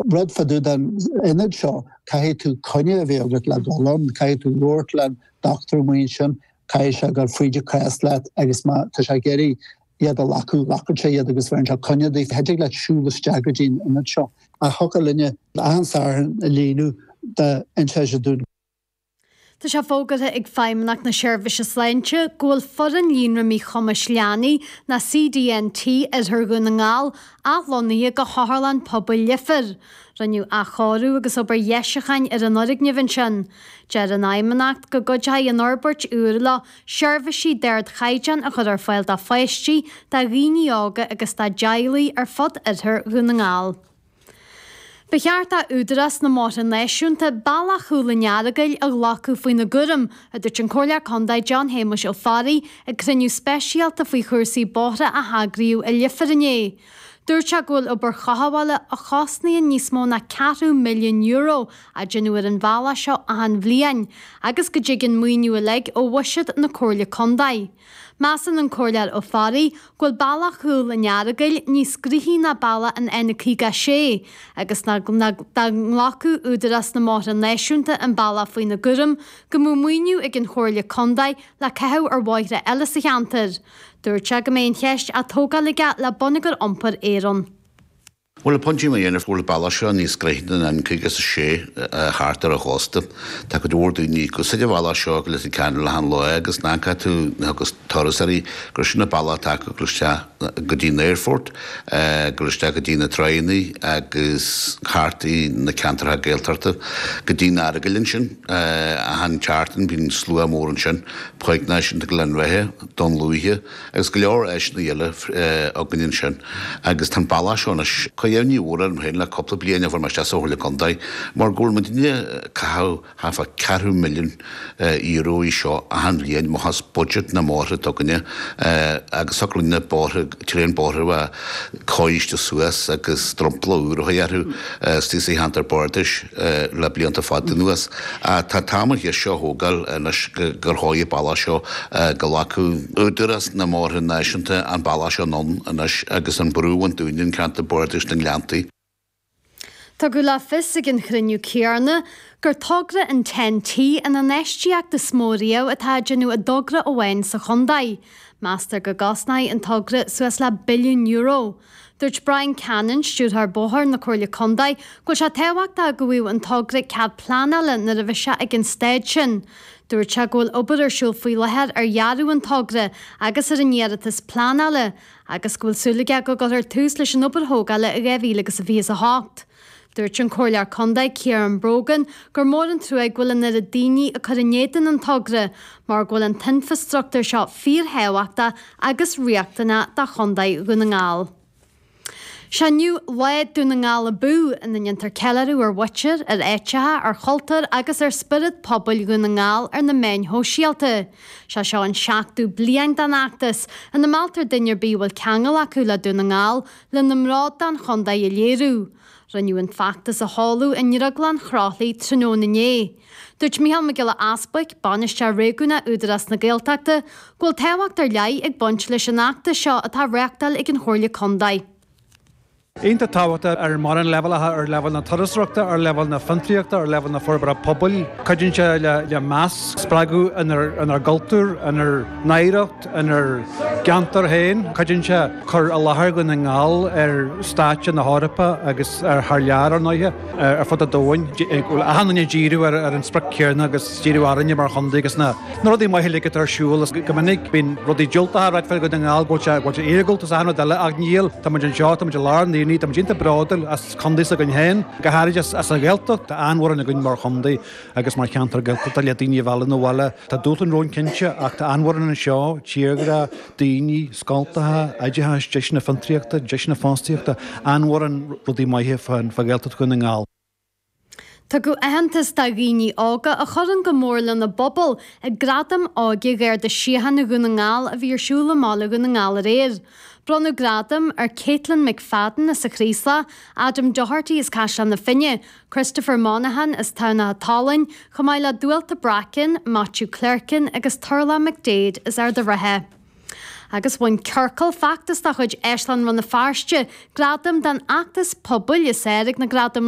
rud fá dtaobh den ionad seo caithfidh tú coinne a bheith agat le dul ann, caithfidh tú labhairt le do dhochtúir roimhe sin, caithfidh sé gabháil fríd do chás leat agus má tá sé ag iarraidh iad a ghlacadh, glacann sé iad agus bheireann sé coinne daofa, chan dtig leat siúl isteach go dtí an ionad seo. Ach thiocfadh linne achan Satharn a líonadh déanta na fírinne. Tá sé fógartha ag Feidhmeannacht na Seirbhíse Sláinte go bhfuil foireann Líonra Míchumais Leanaí na CDNT Oirthear Dhún na nGall athlonnaithe go hOtharlann Pobail Leifear. Rinneadh athchóiriú agus obair dheisiucháin ar an fhoirgneamh ansin. Deir an Fheidhmeannacht go gcuideoidh an fhorbairt úr leo seirbhísí d'ardchaighdeán a chur ar fáil do pháistí, do dhaoine óga agus dá dteaghlaigh ar fud Oirthear Dhún na nGall. Ba cheart d'Údarás na mBóithre Náisiúnta bealach Chúil an Earagail a ghlacadh faoina gcúram, a dúirt an Comhairleoir Contae John Shéamuis Ó Fearraigh ag cruinniú speisialta faoi chúrsaí bóithre a heagraíodh i Leifear inné. Dúirt sé go bhfuil obair chothabhála a chosnaíonn níos mó ná ceathrú milliún euro á déanamh ar an bhealach seo achan bhliain agus go dtig an maoiniú uilig ó bhuiséad na Comhairle Contae. Measann an Comhairleoir Ó Fearraigh go bhfuil bealach Chúl an Earagail níos gnoithí ná bealach an N56 agus dá nglacfadh Údarás na mBóithre Náisiúnta an bealach faoina gcúram go mbeadh maoiniú ag an Chomhairle Contae le caitheamh ar bhóithre eile sa cheantar. Dúirt sé go mbeidh an cheist á tógáil aige le Bonneagar Iompair Éireann. Bhuel, a Pháidín, déarfainn go bhfuil an bealach seo níos gnoithí ná an N56 thart ar an chósta. Tá cuid mhór daoine ag úsáid an bhealach seo go Leitir Ceanainn achan lá agus na cuairteoirí agus turasóirí gur sin an bealach atá acu ag gabháil isteach go dtí an aerfort, ag gabháil isteach go dtí na tránna agus thart ar na ceantartha Gaeltachta go dtí'n Earagail ansin. Achan tseachtain bíonn slua mór ansin, páirc náisiúnta Ghleann Bheatha, Dún Lúiche, Agus go leor áiseanna eile againn ansin agus tá an bealach seo anois, ag cur imní mhór orm féin le cúpla bliain ó chuaigh mé isteach sa Chomhairle Contae mar go bhfuil muidinne ag caitheamh thart fá ceathrú milliún euro air seo achan bhliain, amach as budget na mbóithre s'againne agus thiocfadh linne bóithre, tréan bóithre a. cóiriú suas agus drompla úr a chur orthu istigh sa cheantar bardais le blianta fada anuas. Tá an t-am an deis seo a thógáil anois go dtóigfí an bealach seo. Go nglacfadh Údarás na mBóithre Náisiúnta an bealach seo anonn anois agus an brú a bhaint dínn i, ceantar bardais na nGleanntaí. Tugadh le fios ag an chruinniú céanna gur togra an Ten T an infheistíocht is mó riamh atá á déanamh i dtogra amháin sa chontae. Meastar go gcosnóidh an togra suas le billiún euro. Dúirt Brian Cannon, Stiúrthóir Bóthar na Comhairle Contae, go bhfuil sé tábhachtach go bhfaigheadh an togra cead pleanála nuair a bheidh sé ag an staid sin. Dúirt sé go bhfuil obair ar siúl faoi láthair ar dhearadh an togra agus ar an iarratas pleanála agus go bhfuil súil aige go gcuirfear tús leis an obair thógála i 2028. Dúirt an Comhairleoir Contae Ciaran Brogan gur mór an trua go bhfuil an oiread daoine ag cur in éadan an togra mar go bhfuil an t-infreastruchtúr seo fíorthábhachtach agus riachtanach do Chontae Dhún na nGall. Seo inniu Lá Dún na nGall Abú, ina ndéantar ceiliúradh ar mhuintir, ar áiteacha, ar chultúr agus ar spiorad pobail Dhún na nGall ar na meáin shóisialta. Is é seo an seachtú bliain den fheachtas ina mealltar duine ar bith a bhfuil ceangal acu le Dún na nGall lena mbród don chontae a léiriú. Rinneadh an feachtas a sheoladh i nDrioglann Chroithlí tráthnóna inné. Dúirt Micheál Mac Giolla Easbuic, Bainisteoir Réigiúnach Údarás na Gaeltachta, go bhfuil tábhacht ar leith ag baint leis an fheachtas seo atá á reáchtáil ag an Chomhairle Contae. Iontach tábhachtach ar mhórán leibhéalacha, ar leibhéal na turasóireachta, ar leibhéal na fiontraíochta, ar leibhéal na forbartha pobail. Cuidíonn sé le meas a spreagadh inár gcultúr, inár n-oidhreacht, inár gceantar féin. Cuidíonn sé cur i láthair Dhún na nGall ar stáitse na hEorpa agus thar lear, ar ndóighe. ar fud an domhain, go bhfuil achan duine ag díriú ar an sprioc chéanna agus díriú orainne mar chontae agus na rudaí maithe uilig atá ar siúl. Is go minic bíonn rudaí diúltacha ráite fá Dhún na nGall, go bhfuil sé, go bhfuil sé iargúlta is achan rud eile ach níl, tá muid anseo, tá muid i lár an aonaigh, tá muid iontach bródúil as contae s'againn féin, go háirid as an Ghaeltacht, tá an-mhórán againn mar chontae. agus mar cheantar Gaeltachta le daoine a mhealladh 'na bhaile. Tá dúshláin romhainn cinnte, ach tá an-mhórán anseo, tírghrá, daoine, scoltacha, oideachas, deiseanna fiontraíochta, deiseanna fostaíochta, an-mhórán rudaí maithe fá Ghaeltacht Dhún na nGall. Tugadh aitheantas do dhaoine óga a chuireann go mór lena bpobal ag Gradaim Óige Gharda Síochána Dhún na nGall a bhí ar siúl i mBaile Dhún na nGall aréir. Bronnadh gradaim ar Caitlin McFadden as an Chraoslach, Adam Doherty as Caisleán na Finne, Christopher Monahan as Tamhnach an tSalainn, chomh maith le Dualta Bracken, Matthew Clerkin agus Turlough McDaid as Ard a' Rátha. Agus bhain Ciorcal, feachtas de chuid Áislann Rann na Feirste gradam don fheachtas pobail is fearr ag na gradaim.